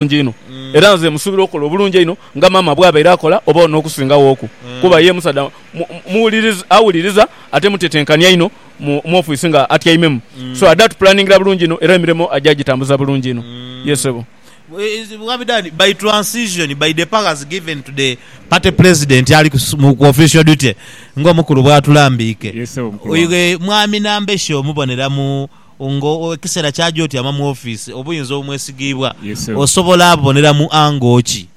bulungi inho era nze musuubira okukola obulungi einho nga maama bw'abaire akola oba n'okusingaghoku kuba ye musaadha awuliriza ate mutetenkania inho mu ofiisi nga atyaimemu. So ada tupulanningira bulungi inho era emirimo aja agitambuza bulungi inho. Yee ssebo. Wabidani, by transition, by the powers given to the party president ali ku official duty ng'omukulu bw'atulambiike, mwami Nambeshe omubonera mu. Nga ekiseera kyaja otyama mu ofiisi, obuyinza obumwesigiibwa osobola boneramu ango ki?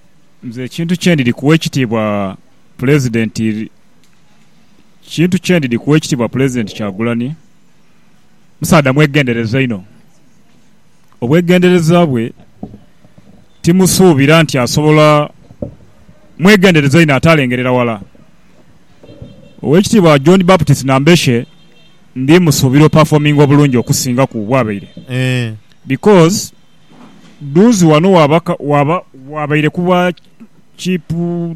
Nze ekintu kye ndidhi kuwa ekitiibwa Pulezidenti ekintu kye ndidhi kuwa ekitiibwa Pulezidenti Kyagulanhi, musaadha mwegendereza inho. Obwegendereza bwe timusuubira nti asobola, mwegendereza inho ate alengerera wala. Oweekitiibwa John Baptist Nambeshe. Ndi musuubira operforminga obulungi okusinga ku bwabaire because Dunzi wano waba wabaire ku bwa Chief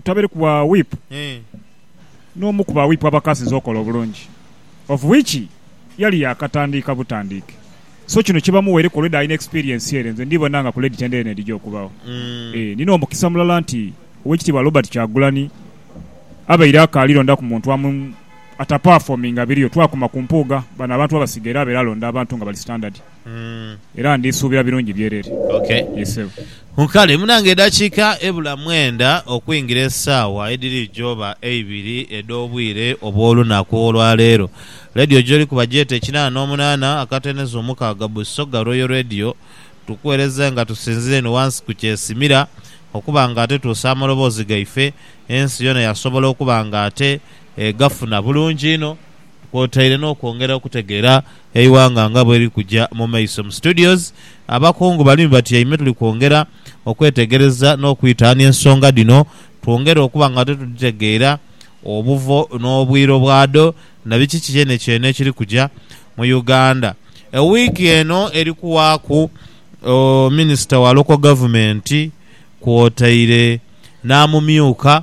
tabaire ku bwa Whip n'omu ku ba Whip abakaasinze okola obulungi of which yali yaakatandiika butandiike so kino kibamuweireku already alina experience ere nze ndibona nga ku Lady Tendere n'edhija okubagho. Eeh ni n'omukisa mulala nti Owekitiibwa Robert Kyagulanyi abaire akaali londaku muntu amu. atapafominga biriyo twakuma ku Mpuuga bano abantu babasiga era abeera alonda abantu nga bali standard era ndisuubira birungi byerere. Yes sebo. Kale munange edakiika ebula mwenda okwingira esaawa edhiri joba eibiri edh'obwire obw'olunaku olwaleero, leediyo gyoli kuba gyete kinana n'omunana akateneza omukaaga Busoga Royal Radio tukuwereze nga tusinzira eno wansi ku kyesimira okuba nga ate tuusa amaloboozi gaife ensi yona yasobola okuba nga ate egafuna bulungi inho kwotaire n'okwongera okutegeera eighanga nga bweliri kuja mu maiso. Mu studios abakungu bali ni batyaime tuli kwongera okwetegereza n'okwitaania ensonga dhino twongere okuba nga tudhitegeera obuvo n'obwire bwadho na biki kyenekyeene ekiri kuja mu Uganda. Ewiiki eno eri kuwaaku Minisita wa Local Gavumenti kwotaire n'amumyuka.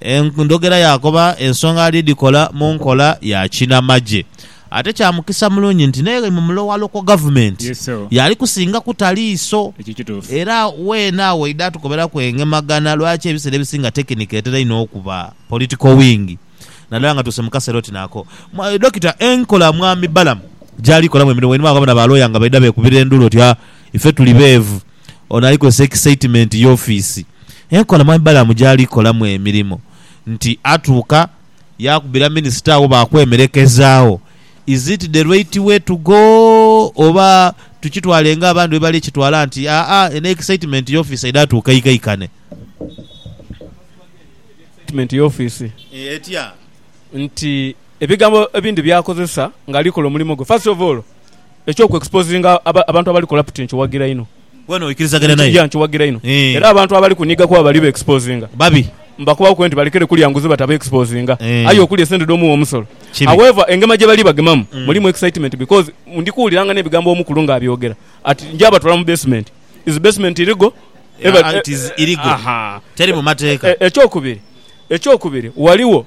Endhogera yaakoba ensonga ali dhikola mu nkola ya kinamagye. Ate kya mukisa mulungi nti n'eyo mu mulowalo kwa Gavumenti y'ali kusinga kuta liiso. Era weena agho oidha atukoberaku engemagana lwaki ebiseera ebisinga tekinika etera inho okuba, political wing, naddala nga tuuse mu kaseera oti n'ako. Dokita, enkola Mwami Balaam gy'ali kolamu emirimu wainuma agho bona ba looya nga baidha beekubira endulu oti, Ha, ife tuli beevu. Ono ali kozesa ekisaitimenti y'ofiisi enkola Mwami Balaam gy'ali kolamu emirimo nti atuuka yaakubira minisita agho baakwemerekezaagho Is it the right way to go oba tukitwale nga abandi bwe bali kitwala nti aa eno ekisaitimenti y'ofiisi aidha atuuka aikaikane Ekisaitimenti y'ofiisi etya nti ebigambo ebindi by'akozesa ng'ali kola omulimo gwe First of all, Eky'oku exposinga abantu abali corrupt nkiwagira inho. Gwe n'oikirizagana naye? Yeah nkiwagira inho. Era abantu abali kunhiga kuba bali be exposinga. Babi. Mbakoba ku nti balekere kulya nguzi bata be exposinga aye okulya esente dh'omuwi omusolo. However engema gye bali bagemamu mulimu excitement because ndi kuwuliranga n'ebigambo omukulu nga abyogera ati nja batwala mu basement. Is basement illegal? It is illegal. Teri mu mateeka. Eky'okubiri, eky'okubiri, waliwo.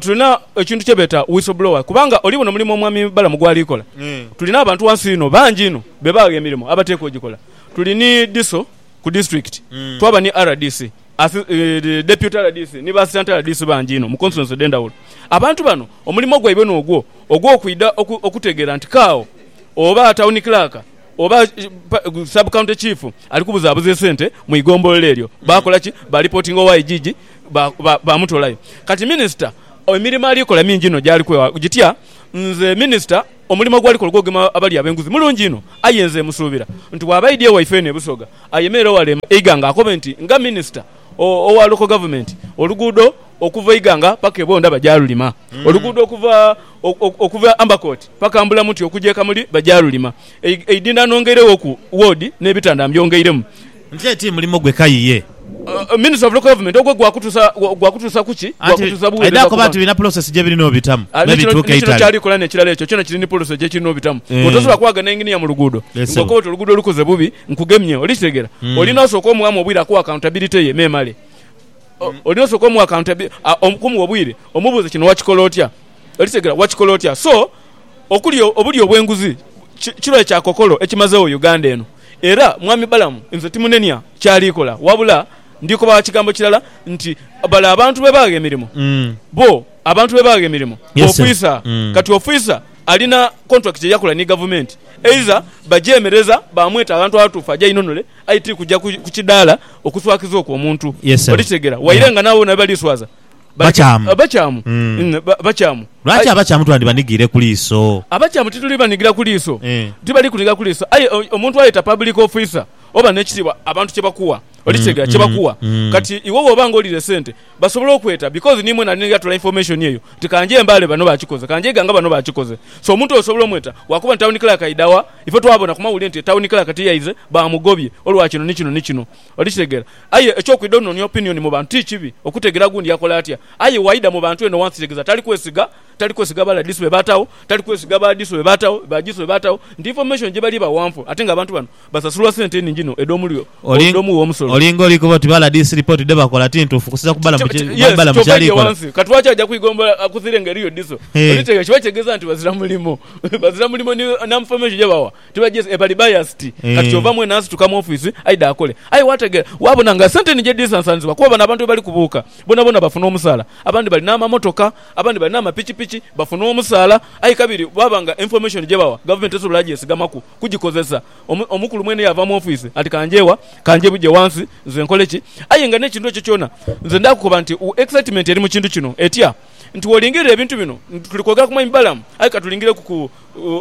Tulina ekintu kye beeta whistleblower kubanga oli bona omulimu omwami Balamu gwali kola. Tulina abantu ghansi ghino bangi inho be baagha emirimo abateekwa ogikola. Tuli ni DISO ku disiturikiti, twaba ni rdc, deputy rdc ni ba assistant rdc bangi inho mu constituency edh'endhawulo. Abantu bano omulimu gwaibwe n'ogwo ogw'okwidha okutegeera nti kaagho oba town clerk oba sub county chief ali kubuzaabuza esente mu igombolola eryo, baakola ki? Baalipotinga owa igigi. baamutoolayo. Kati minisita emirimo ali kola mingi inho gy'ali kwewaaku gitya? Nze minisita omulimo gw'ali kola ogw'okugema abalya ab'enguzi mulungi inho, aye nze musuubira nti bw'aba aidye ewaife eno e Busoga ayemerere wale e Iganga akobe nti nga minisita owa Local Government oluguudo okuva e Iganga paka e Bwondha bagyalulima, oluguudo okuva okuva e Ambercourt paka Mbulamuti okugya e Kamuli bagyalulima, eidhindha nongeire wooku woodi n'ebitanda mbyongeiremu. Nti kale ti mulimo gwe kayi ye. Ministry of Local Government ogwo gwa kutuusa ku ki? Gwa kutuusa buweereza ku bantu. Aidha koba nti birina pulosesi gye birina obitamu. Ni kino ky'ali kola n'ekirala ekyo kyona kiri ni pulosesi gye kirina obitamu. Otosobola kwagha na engineer mu luguudo ng'okoba oti oluguudo olukoze bubi nkugemye. Oli kitegeera? Olina osooka omughamu obwire akuwe accountability ye memale. Olina osooka omuwa accountability, okumuwa obwire omubuuze kino wakikola otya? Oli kitegeera? Wakikola otya? So okuli obulyo obw'enguzi kirwaire kya kookolo ekimazegho Uganda eno. Era mwami Balamu, nze timunenia ky'ali kola, wabula ndi kobagha kigambo kirala nti, Bale abantu be baagha emirimo, bo abantu be baagha emirimo b'ofwisa. Kati ofwisa alina kontulakiti ye yakola ni gavumenti, eiza bagyemereza baamweta aghantu aghatuufu aje ainunule, aye ti kuja ku kidaala okuswakiza okwo omuntu. Oli kitegeera? Waire nga n'abo bona be baliswaza. Bakyamu. Abakyamu. Mm. Mm, ba- Bakyamu. Lwaki Aye- abakyamu twandibanigiire ku liiso? Abakyamu tituli banigira ku liiso. Eh. Tibali kuniga ku liiso. Aye o- omuntu ayeta public officer oba n'ekitiibwa abantu kye bakuwa. Olikitegeera? Kye bakuwa. mm. Kati iwe bw'oba nga oliire sente basobola okweta because ni mwena ninga atoola information eyo nti ka nje e Mbale bano baakikoze, ka nje e Iganga bano baakikoze. So omuntu oyo osobola omweta lwakuba nti town clerk aidha wa? Ife twabona ku mawulire nti town clerk tiyaize, baamugobye olwa kino ni kino ni kino. Oli kitegeera? Aye eky'okwidha ononia opinioni mu bantu ti kibi, okutegeera gundi akola atya. Aye waidha mu bantu eno wansi kitegeza tali kwesiga, tali kwesiga baladisu be baatagho, tali kwesiga ba disu be baatagho, ba jisu be baatagho, nti information gye bali bagha nfu ate nga abantu bano basasulwa sente nhingi inho edh'omuli edh'omu w'omusolo. Olinga oli kuba oti baladiisi lipooti dhe bakola ti ntuufu kusinziira ku Balamu bye Yes, Balamu ky'ova ky'ali aidhie kola. wansi. Kati lwaki aja kwigombola akuzire nga eriyo diso? Oli Hee. kitegeera? Kiba kitegeeza nti bazira mulimo. Bazira mulimo ni n'information gye bagha. Tibajeza e bali biased kati kyova mwene asituka mu office aidha akole aye wategera wabona nga sente ni gyedhisansanizibwa kuba bano abantu bwebali kubuuka bonabona bafuna omusaala abandi balina amamotoka abandi balina amapikipiki bafuna omusaala aye kabiri bwaba nga information gyebawa government tesobola gyesigamaku kugikozesa omukulu mwene yava mu office ati kanjewa kanjebuje wansi nze nkole ki aye nga nekintu ekyo kyona nze ndakukoba nti excitement eri mu kintu kino etya nti wolingirira ebintu bino tuli kwogera ku mwami Balaam aye katulingireku ku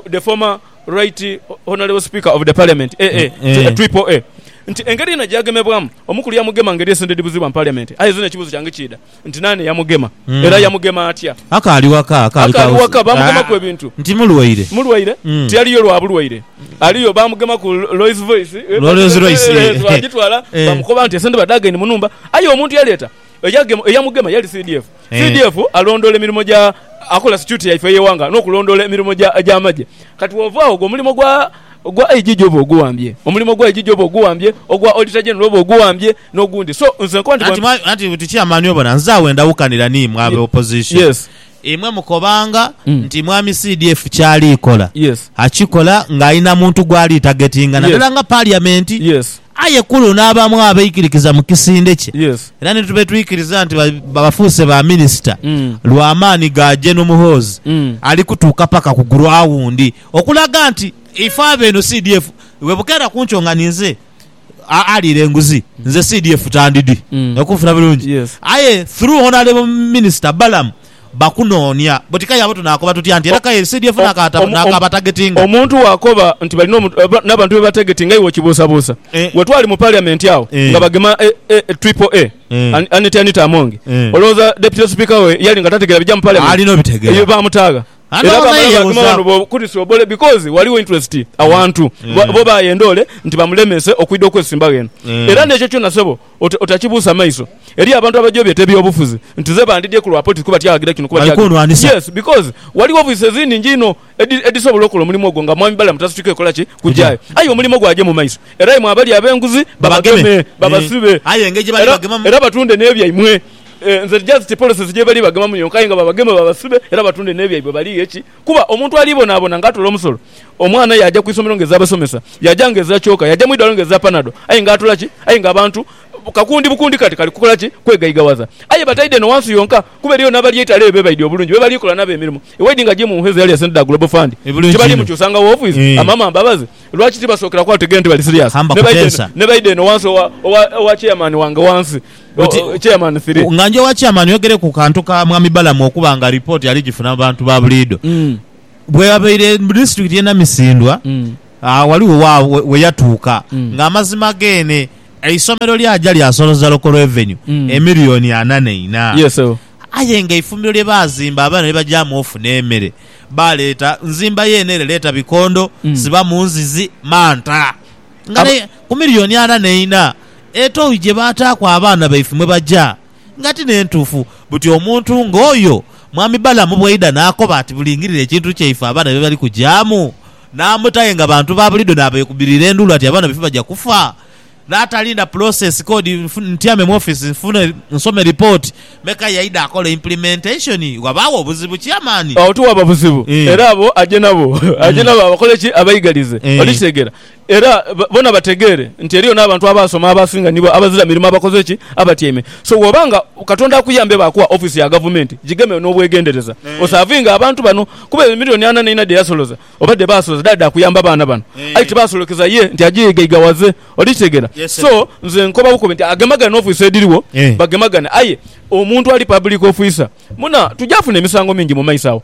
the former Right Honourable Speaker of the Parliament, AA, to a Triple A, nti engeri yena gyagemebwamu, omu kuli yamugema ngeri esendedi buzibu mu Parliament. Aye zino ekibuzo kyange kiidha nti naani eyamugema era yamugema atya? Akaali waka, akaali ka Akaali waka, bamugemaku house. ebintu. Nti mulwaire. Mulwaire? Mm. Tiyaliyo lwa bulwaire. Aliyo bamugemaku Rolls Voice, Rolls Royce, eh, eh, eh, eh, twagitwala, eh. bamukoba nti esente badhagaine mu nhumba. Aye omuntu yaleeta. eyagema eyamugema yali CDF. Eh. CDF alondoola emirimo gya akola security yaife ey'eghanga n'okulondoola emirimo gya gy'amagye. Kati bw'ova agho ogwo omulimo gwa gwa IGG oba oguwambye. Omulimo gwa IGG oba oguwambye, ogwa Auditor General oba oguwambye n'ogundi. So nze nkoba nti Anti bwemba... mwa- anti buti chairman obona nze agho endawukanira ni imwe abe opposition. Yes. Imwe mukobanga Mm. nti mwami CDF kyali kola Yes. akikola nga alina muntu gwali targetinga Yes. nadala nga parliament. Yes. Aye ku luno abamu abaikirikiza mu kisinde kye era ni tubetwikiriza nti bafuuse ba minisita lwa maani ga Gen Muhoozi ali kutuuka paka ku guraundi okulaga nti ife abeeno CDF webukeera kunkyo nga ninze aliira enguzi nze CDF tandidi. Oli kunfuna bulungi? Aye through Honourable Minisita Balaam bakunoonia boti k'aye abo tunaakoba tutya nti era k'aye CDF naakabatagetinga? Omuntu bw'akoba nti balina n'abantu be batagetinga iwe okibuusabuusa. Bwe twali mu Parliament agho nga bagema Triple A, Annet Anita Among, olowooza Deputy Speaker we yali nga tategeera bigya mu Parliament? Eyo baamutagha. Era baamala baagema ghano bookutusa obole because ghaligho interest awantu bo baayenda ole nti bamulemese okwidha okwesimbagho eno. Era n'ekyo kyona ssebo Otakibuusa maiso eri abantu abaja obyeta ebyobufuzi nti ze bandidye kulwa poti kuba tyaghagira kino kuba tyaghagira kino. Balikunwanisa. Yes because ghaligho office ezinhingi inho edi edisobola okola omulimo ogwo nga Mwami Balaam tasituke kukola ki? Kujayo. Aye omulimo gwagye mu maiso era imwe abali abenguzi babageme, Babageme. babasibe Eeh. Aye engeri gyebali era bagemamu. era batunde nebyaimwe. Eeh nze just policies gyebali bagemamu yonka aye nga babageme babasibe era batunde nebyaibwe balighe ki? Kuba omuntu alibonaabona nga atoola omusolo, omwana aye yaja ku isomero nga eza basomesa, yaja nga eza kyoka, yaja mu idwaliro nga eza panado, aye nga atoola ki? Aye nga abantu kakundi bukundi kati kali kukola ki? Kwegaigaghaza. Aye bataidhe eno wansi yonka, kuba eriyo n'abali eitale eyo be baidhi obulungi, be bali kola nabo emirimo. Ewaidhi nga jimu nhu ezo eyali esente dha Global Fund, tibali mukyusa nga woofiisi? Amama mbabazi! Lwaki tibasookera ku ategeera nti bali siriyaasi, ne baidha eno wansi owa, owa, owa chairman wange wansi? Oti, Chairman three. Nga njowa Chairman oyogere ku kantu ka Mwami Balamu okuba nga report ali gifuna mu bantu ba buliido. Bweyabaire mu district ye Namisindwa, agho ghaligho wa we yatuuka nga amazima geene eisomero lyaja lyasoloza Local Revenue emillion ana neina. Yes sebo. Aye nga eifumbiro lye baazimba abaana ni bagyamu off n'emere, baaleeta nzimba yeene ere leeta bikondo, sibamu nzizi, manta. nga Aba- n'e ku miliyooni ana n'eina, etoyi gye baataaku abaana baife mwe baja, nga ti n'entuufu. Buti omuntu nga oyo Mwami Balamu bw'aidha n'akoba ati bulingirire ekintu kyaife abaana bye bali kugyamu, n'amuta aye nga bantu ba buliidho n'abeekubirira endulu ati abaana baife baja kufa, n'atalinda pulosesi kodi nfu- ntyame mu ofisi nfune nsome lipooti, meka yaidha akola implementation, ghabaagho obuzibu Chairman. Agho tiwaba buzibu. Eh. Era abo aje nabo aje nabo abakole ki? Abaigalize. Eh. Oli kitegeera? Era bona bategeere nti eriyo n'abantu abaasoma abasinga nibo abazira mirimo abakoze ki? Abatyaime. So bw'oba nga Katonda akuyambye baakuwa ofiisi ya gavumenti, gigeme n'obwegendereza osaavinge abantu bano. Kuba eyo milioni ana n'eina dhe yasoloza oba dhe baasoloza dhaali dha kuyamba abaana bano, aye tibaasolokeza ye nti agyeigaigaghaze. Oli kitegeera? So nze nkoba bukobi nti agemagane n'ofiisi edhiriwo, bagemagane. Aye omuntu ali pabuliiki ofiisa, muna, tugya funa emisango mingi mu maiso agho.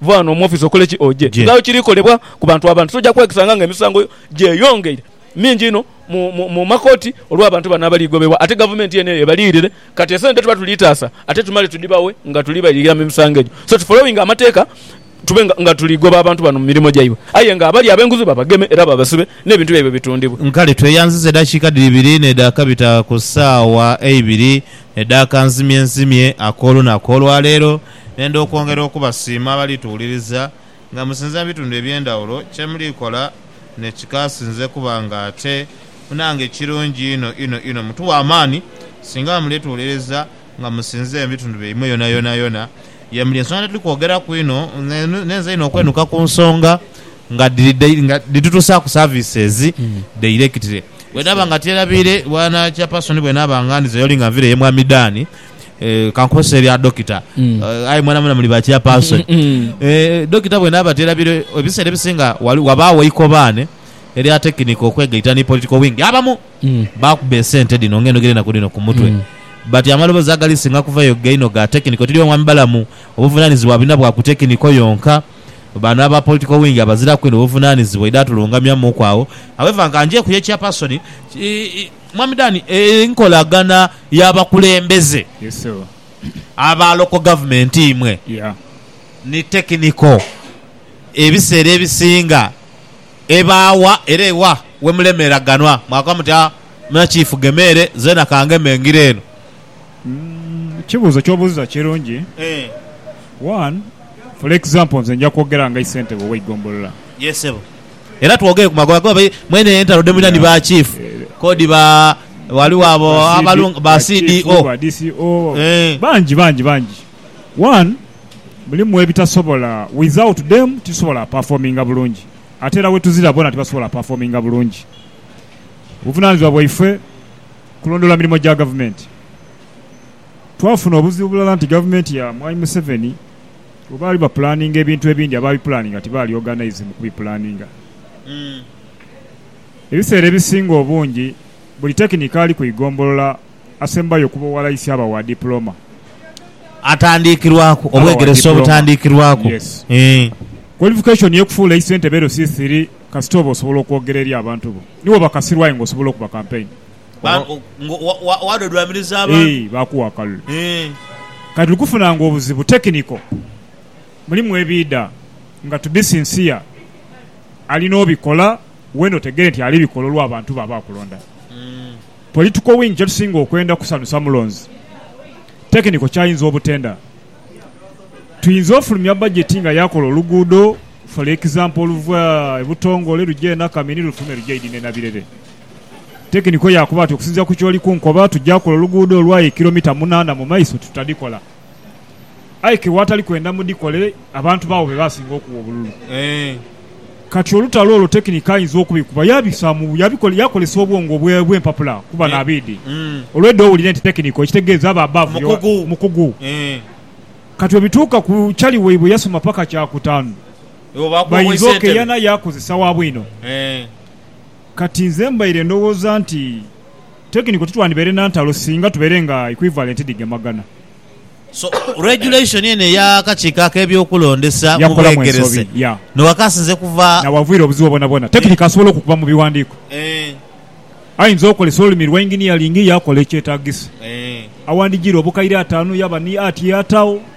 Va ghano mu ofiisi okole ki? Oje. Nga bwe kiri kolebwa ku bantu abandi, toja kwekisanga nga emisango gyeyongeire mingi inho mu makooti olw'abantu bano abali gobebwa ate gavumenti eno eyo ebaliyirire. Kati esente tuba tuli taasa ate tumale tudhibaghe nga tuli bayirira mu misango egyo. So tu following amateeka tube nga tuli goba abantu bano mu mirimo gyaibwe aye nga abali abenguzi babageme era babasibe n'ebintu byaibwe bitundhibwe. Kale tweyanziza edhakiika dhiri biri n'edhakabita ku saawa eibiri edh'akanzimyenzimye ak'olunaku olwaleero. Nenda okwongera okubasiima abali tuwuliriza nga musinza mu bitundu eby'endhawulo. Kye muli kola ne kikaasinze kuba nga ate munange kirungi inho inho inho. Mutuwa amaani singa muli tuwuliriza nga musinziire mu bitundu byaimwe yonayonayona ye muli. Ensonga dhituli kwogeraku inho nhenze inho okwenuka ku nsonga nga dhitutuusaaku services directly. Bwenaaba nga tyerabiire, Bwana Chairperson, bwenaaba nga ndhize y'oli nga nviire ye Mwami Dan, eh, kankozese ebya dokita mm. eh, aye mwenamwena muli ba chairperson mm, mm, mm. eh, dokita bwenaba tera biro ebiseera ebisinga wabaawo ikobaane erya tekiniko okwegaita ni political wing abamu mm. bakuba esente dino ng'enogere naku dino ku mutwe mm. but amaloboozi agali singa kuvayo gaino ga tekiniko tiri omwami balamu obuvunanizibwa bina bwa ku tekiniko yonka bano aba political wing abaziraku ino obuvunanizibwa idatulungamyamuku awo however nga nje kuye chairperson Mwami Dan, enkolagana y'abakulembeze aba local government imwe ni technical ebiseera ebisinga ebaawa era ewa wemulemeraganwa mwakoba muti aa mina chief gema ere zeena kangeme ngire eno? Ekibuuzo kyobuuziza kirungi. One, for example nze nja kwogera nga isentebe oweigombolola. era twogere ku magoba goba mwene entalo dhe mulina ni ba chief kodi ba waliwo abo abalungi ba CDO eeh. Bangi bangi bangi one mulimu ebitasobola with out them titusobola performinga bulungi ate era wetuzira bona tibasobola performinga bulungi. Buvunanizibwa bwaife kulondoola mirimo gya gavumenti. Twafuna obuzibu bulala nti gavumenti ya mwami Museveni. Bwe baali bapulaaninga ebintu ebindi, abaabipulaaninga tibaali oganaizi mu kubipulaaninga. Ebiseera ebisinga obungi, buli tekinikaali ku igombolola asembayo okuba owalaisi aba wa dipulooma. Atandiikirwaku, obwegeresa obutandiikirwaku. Kwalifikashoni y'okufuula eisentebe LC3 kasita oba osobola okwogera eri abantu bo. Ni wo bakasirwa aye ng'osobola okuba kampeyini. Ba- Oba- ngo- wa- wa- wadodwamiriza abantu Eeh, bakuwa akalulu. Eh, Kati tuli kufunanga obuzibu technical. Mulimu ebiida nga to be sincere alina obikola wena otegere nti ali bikola olwa bantu be aba akulonda. Political wing kyetusinga okwenda kusanusa mulonzi. Technical kyayinza obutenda. Tuyinza ofulumya budget nga yakola oluguudo for example oluva e Butongole luja e Nakamini lufulume luje Idine Nabirere. Tekiniko yaakoba ati, Okusinziira ku ky'oli kunkoba, tujja kukola oluguudo olw'aye kilomita munaana mu maiso tutadhikola. Aye ke waatali kwenda mudhikole, abantu baagho be baasinga okuwa obululu. Kati olutalo olwo tekiniko ayinza okubikuba yaabisaamu, yaabikola, yaakozesa obwongo bwe bw'empapula kuba n'abiidhi. Olwedha owulire nti tekiniko ekitegeeza aba above your, mukugu. Kati bwe bituuka ku chali waibwe yasoma paka kyakutaanu, bayinza okeeyana yaakozesa wa bwino. Kati nze mbaire ndhowooza nti technical titwandibaire na ntalo singa tubaire nga equivalent dhigemagana. So, regulation eno eya akakiiko ak'ebyokulondesa mu Yakolamu ensobi, bwegerese yeah. no wakasinze kuva. N'awavuyira obuzibu bwonabwona. Technical asobola okukuba mu biwandiiko. Eeh. Ayinza okozesa olulimi lwa engineering yaakola ekyetaagisa. Eeh. Awandijiire obukaire ataanu yaba ni ati y'ataagho.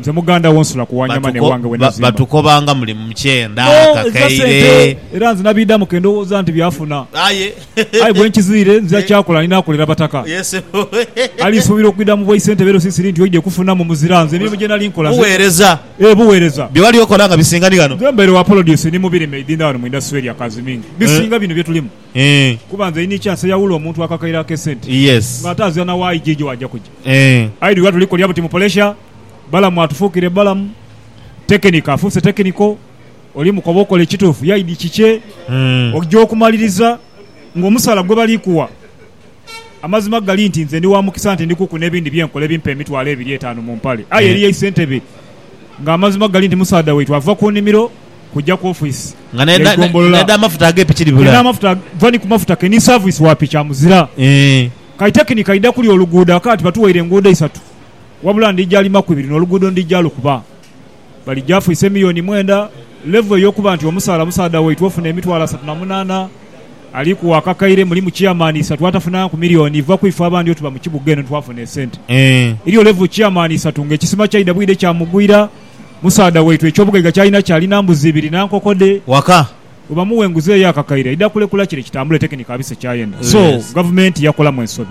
Nze muganda wo nsula ku Wanyama ne wange we nazimba. Batukobanga muli mu kyenda, kakaire. Era nze nabiidamu ke ndowooza nti byafuna. Aye bwe nkiziire, nzira kyakula ni naakolera Bataka. Ali suubira okwidha mu bwaisente bye loosi siri nti oidha kufuna mu muzira. Nze emirimu gye nali nkola. Buweereza. Ee, buweereza. Bye wali okola nga bisinga ni ghano. Nze mbaire wa polodiyusi ni mu birime eidhindhano mu indasitule erya Kazimingi. Bisinga bino bye tulimu. Eeh. Kuba nze inhi kya seyawula omuntu akakaire ake sente Yes. nga ate azira na wa aija ejo waja kuja. Eeh. Aidhi lwa tuli kolya buti mu polesha, Balamu atufukire Balamu, tekinika afuuse tekiniko, oli mukoba okola ekituufu yaidhi kikye, Eeh. oja okumaliriza nga omusaala gwe bali kuwa Amazima gali nti nze ndi wa mukisa nti ndi kuku n'ebindi bye nkola ebimpa emitwalo ebiri etaanu mu mpale. Aye eriyo eisentebe nga amazima gali nti musaadha waitu ava ku nimiro kuja ku ofiisi Nga n'e- n'e- y'eigombolola. n'edh'amafuta ag'epiki Ye dhibula. n'amafuta va ni ku mafuta ke ni saavisi wa piki amuzira. Eeh. Kati tekinika idha kuli oluguudo akaati batuweire enguudo isatu wabula ndija limaku ibiri n'oluguudo ndija lukuba. bali gyafu ise miyoni mwenda, level eyokuba nti omusaala musaadha waitwe ofuna emitwalo asatu na munana ali ku wakakaire mulimu chairman isatu atafunanga ku million iva kwife abandi otuba mukibuga eno twafuna esente eriyo level chairman isatu nga ekisima kyaida bwide kyamugwira musaadha waitwe ekyobugaiga kyalina ki alina mbuzi ibiri na nkoko dhe waka webamuwa enguzi eyo akakaire aida kulekula kire kitambule technical abise kyayenda so gavumenti yakolamu ensobi.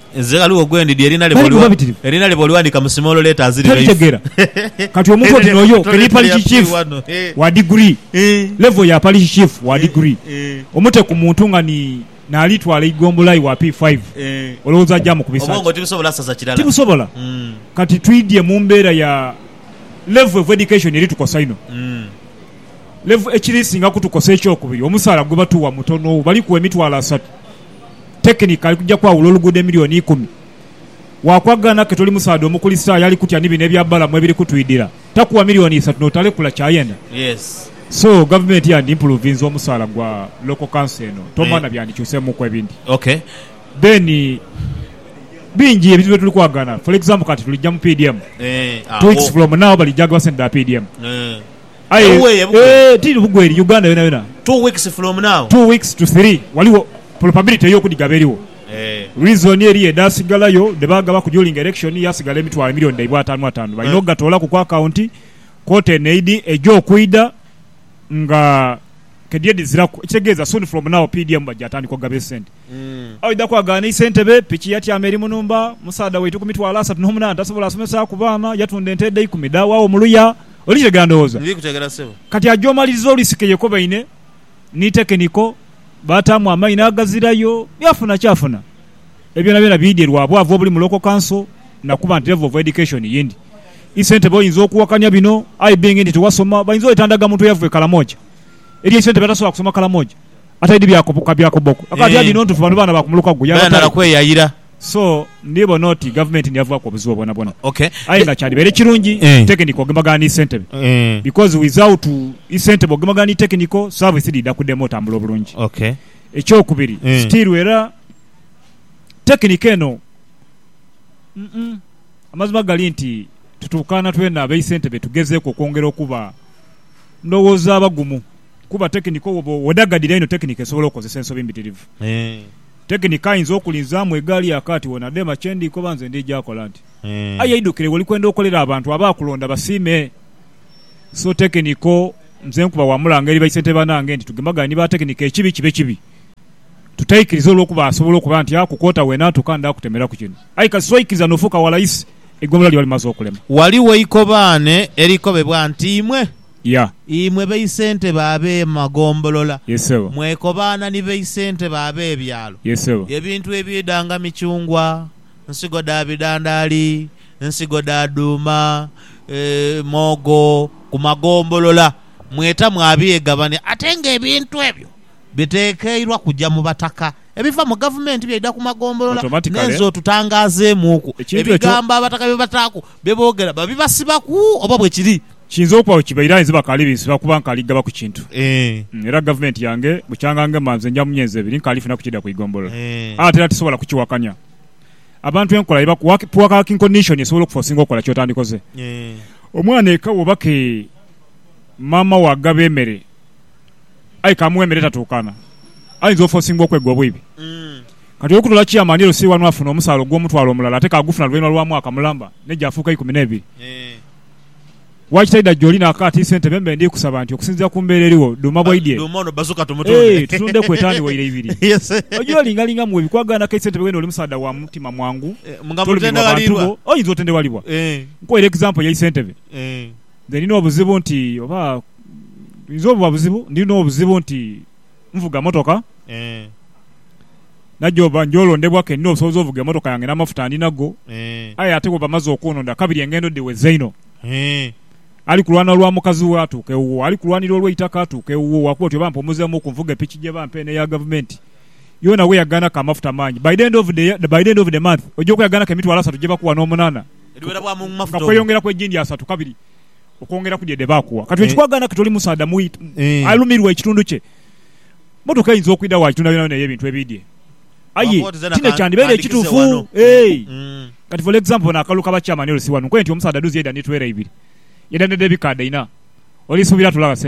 Nze ghaligho gwendidhi erina lye Tali kuba boliwa bitirivu. erina lye bolighandika mu small letters live Talitegera. Kati omuntu oti noyo ke ni parish chief wa degree, level ya parish chief wa degree omute ku muntu nga ni nali twala eigombola iwa P five olowoza aja mukubisa Obwongo ki? tibusobola saza kirala. Tibusobola. Mm. Kati twidhye mu mbera ya level of education eri tukosa inho. Mm. Level ekiri singa kutukosa ekyokubiri omusaala gwe batuwa mutono bali kuwa emitwalo asatu. tekinika ali kuja kwawula oluguudo emilioni ikumi. Waakwagaana ke toli musaadha Omukulisitaayo ali kutya ni bino ebya Balamu ebiri kutwidhira. Takuwa milioni isatu n'otalekula ky'ayenda? Yes. So, gavumenti yandimpuruvinze omusaala gwa local council eno? Toma na byandikyuseemuuku ebindi. Ok. Then, bingi ebintu bye tuli kwagaana. For example kati tulija mu PDM. Eeh, Two weeks agho. from now balijaaga sente dha PDM. Eeh. Aye Ewuweeyo bugwe. eeh tiri bugwe eri Uganda yonayona. Two weeks from now. Two weeks to three waliwo probability ey'okudigaba eriwo. Eeh. Reason eri edhaasigalayo dhebaagabaku during election yaasigala emitwalo million dhaibwe ataanu ataanu. Balina okugatoolaku ku account kwoota eno eidhi eja okwidha nga kediedhiziraku. Ekitegeeza soon from now PDM bajja tandika okugaba esente. Aidha kwaganisa entebe, piki yatyama eri mu nhumba. Musaadha waitu ku mitwalo asatu n'omunaana tasobola asomesaaku baana, yatunda ente edha ikumi dh'awaagho mu luya. Oli kitegera ndowooza? Ndi kutegera sebo. Kati aja omaliriza olwisika eyekobaine ni tekeniko, baataamu amaino agazirayo, yaafuna kyafuna. Ebyo byonabyona biidhie lwa bwavu obuli mu Local Council na kuba nti level of education ye ndi. Isentebe oyinza okuwakania bino, I being nti tiwasoma, bayinza oita ndagamuntu eyava e Kalamoja. Eri eisentebe atasobola kusoma Kalamoja. Ataidhi bya kubuka bya kubboku. Akaba ati adi nontufu bano baana ba kumuluka gwo yaba tali. So ndibona oti gavumenti niyavaaku obuzibu bwonabwona. Aye nga kyadibaire kirungi tekiniko ogemagana ni ssentebe because without i ssentebe ogemagana ni tekiniko service dhiidha kudema otambula obulungi. Ekyokubiri still era tekiniko eno umm amazima gali nti tutuukaana twena abaisentebe tugezeeku okwongera okuba ndowooza abagumu. Kuba tekinika owo bwoba odagadira inho tekinika esobola okukozesa ensobi mbitirivu. Tekinika ayinza okulinzaamu egaali ya kaati wo nadheema kye ndi koba nze ndija kola nti. Aye eidhukire woli kwenda okolera abantu abaakulonda basiime. So tekiniko nze nkuba wa mulanga eri baisentebe banange nti tugemagane ni ba tekinika ekibi kibe kibi tutaikiriza olwokuba asobola okuba nti aku kwota wena ntuka nda kutemeraku kino aye kasita oikiriza nofuuka wa layisi eigombolola liba limaze okulema. Waliwo eikobaane erikobebwa nti imwe. Ya. Imwe baisentebe ab'emagombolola, Ye sebo. mwekobaana ni baisentebe ab'ebyalo. Ye sebo. Ebintu ebiidha nga michungwa, nsigo dha bidhandaali, nsigo dha dhuuma, mwogo ku magombolola mweta mwabyegabania ate ng'ebintu ebyo bitekeirwa kuja mu bataka. Ebiva mu gavumenti byaidha ku magombolola n'ensi otutangaazeemuuku. Ebigambo abataka bye bataaku bye boogera babibasibaku oba bwe kiri? Kiyinza okuba bwe kibaire aye nze bakaali binsiba kuba nkaali ghaba ku kintu. Era gavumenti yange bukya nga ngema nze nja mu myezi ebiri nkaali funaku kidha ku igombolola. Aye ate era tisobola kukiwakanya. Abantu enkola ye bakuwa working condition esobola okufosinga okola ky'otandikoze. Omwana eka bw'oba ke maama wo agaba emere. aye kamughe emere etatuukana, ayinza ofosingibwa okwegwa obwibi. Kati olw'okutola Chairman LC wano afuna omusaala ogw'omutwalo omulala ate kaagufuna luvainhuma lwa mwaka mulamba ne gyafuuka eikumi n'ebiri. Waki taidha gyoli n'akaati, Ssentebe mbe ndi kusaba nti okusinziira ku mbeera eriwo, dhuuma bwaidhie ee tutundeku etaani waire ibiri. Oja olingalinga mu webi kwagaana kei Ssentebe weena oli musaadha wa mutima mwangu tolumirwa bantu bo oyinza otendeghalibwa. Nkuwaire example yei Ssentebe. Nze nina obuzibu nti oba buyinza obuba buzibu nina obuzibu nti nvuga motoka Eeh. Nagyoba nja olondebwa ke nina obusobozi ovuga emotoka yange n'amafuta ndi nago Eeh. aye ate bwe bamaze okunonda kabiri engendo dhiweza inho. Eeh. Ali kulwana olwa mukazi we atuuka ewuwo, ali kulwanira olw'eitaka atuuka ewuwo wakuba oti oba mpumuzeemuuku nvuge piki gye bampa eno eya Gavumenti yoona we yagaanaku amafuta mangi. By the end of the year, by the end of the month oja okweyagaanaku emitwalo asatu gye bakuwa n'omunaana. nga kweyongera ku egindi asatu kabiri okwongera ku dhi dhe baakuwa. Kati bwe kikwagaana kati oli musaadha mu alumirwa ekitundu kye, mmotoka eyinza okwidha waagitunda yonayona ey'ebintu ebiidhie. Aye ti ne kyandibaire ekituufu. Kati for example bano akalulu ka ba chairman LC wano, nkoye nti omusaadha adhuuzi yaidha ni twera ibiri, yaidha n'edh'ebikaadha ina, oli suubira atulagha sente?